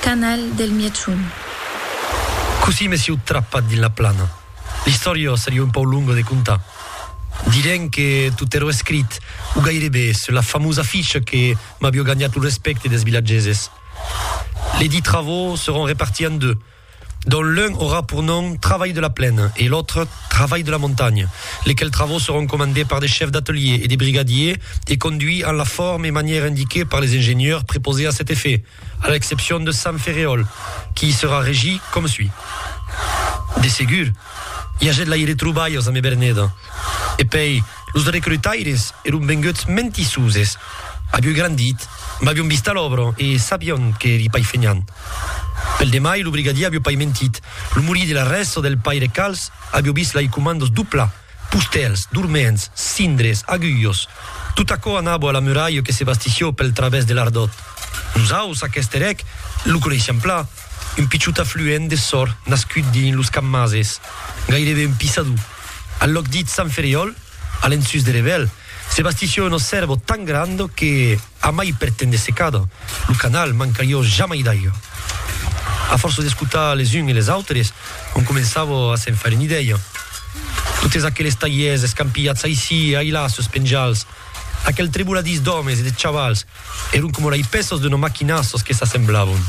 Canal del Mièchon. Cossí me sieu trapat dins la plana? L'istòria seriá un pauc longa de contar. Direm que tot èra escrit, o gairebe, sus la famosa ficha que m'aviá ganhat lo respècte dels vilatgeses. Les dits travaux seront repartis en deux, dont l'un aurà pour nom Travail de la plaine e l'autre Travail de la montagne, lesquels travaux seront comandés par des chefs d'atelier e des brigadiers e conduits en la forme e manièra indiquée par les ingenieurs prepausés à cet effet. A l'excepcion de Sant Ferreol, qui i serà regit com sui. De segur, i agèt la i retrobalhas amb Eberneda. E pei, los recrutaires eron venguts mentissuses, avioi grandit, m'avion vist a l'òbra e sabion que eri pai fenhant. Pel demai, lo brigadier avió pai mentit, lo morir de la rèsta del paire Cals avió vist lai comandos doblar. Pustèls, dorments, cindres, agulhos, tot aquò anabo a la muralha que se bastissió pel travèrs de l'Ardòt. Nosaus, aqueste rèc, lo coneishiam pla, un pichot afluent de sòr nascut dins los cammases, gairebe un pissador. Al lòc dit Sant Ferriòl, a l'ensús de Revel, se bastissió un òsservo tan grand que, Amai per te'n de secada, lo canal mancarió jamai d'aiga. A fòrça d'escotar les uns e les autres, on començava a se'n faire un'idèia. Totes aqueles talhièrs escampilhats aicí e ailà sus penjals, aquel treboladís d'òmes e de chavals, èron coma lei pèças d'una maquina sos que s'assemblavan.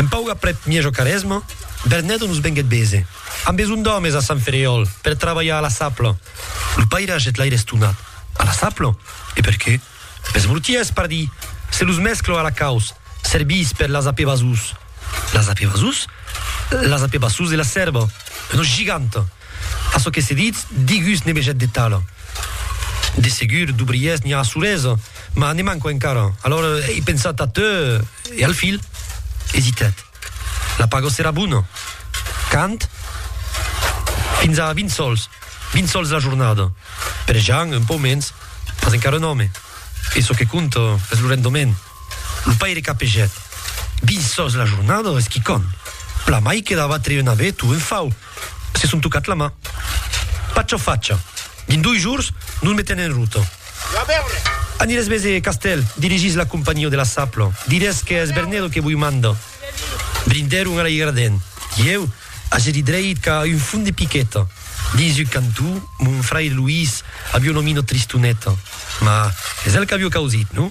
Un pauc aprèp Miejo Caresma, Bernèdo nos venguèt bese. Am besonh d'òmes a Sant Ferriòl per trabalhar a la sapla. Lo paire hagèt l'aire estonat. A la saplo. E per qué? Pes bruties, pardí! Se los mesclo a la caus, serviss per las apevasús. Las apevasús? Las apevasús de la sèrva. Una giganta! A çò que se ditz, digus ne vegèt de tala. De segur, d'obriers n'i a a Soresa, mas ne manco encara. Alòr, ei pensat a teu e al filh. Esitèt. La pago serà bona. Quand? Fins a 20 sòls. 20 sòls la jornada. Per Jean, un pòu mens, mas encara un òme. E çò que compta es lo rendement. Lo paire capegèt. 20 sòls la jornada es quicòm. Plan mai que d'abattre un avet o un fau. Se son tocat la man. Pacha facha. Dins dois jors nos metem en rota. An i les mes e castèl, dirigís la companhió de la sapla. Dirés qu'es Bernedo que voi mandar. Brindèron a l'aigraden. Ieu age dit dreit qu'a un fum de piqueta. Dins un cantó, mon frair Luís avió nomina Tristoneta. Mas es el qu'avió causit, non?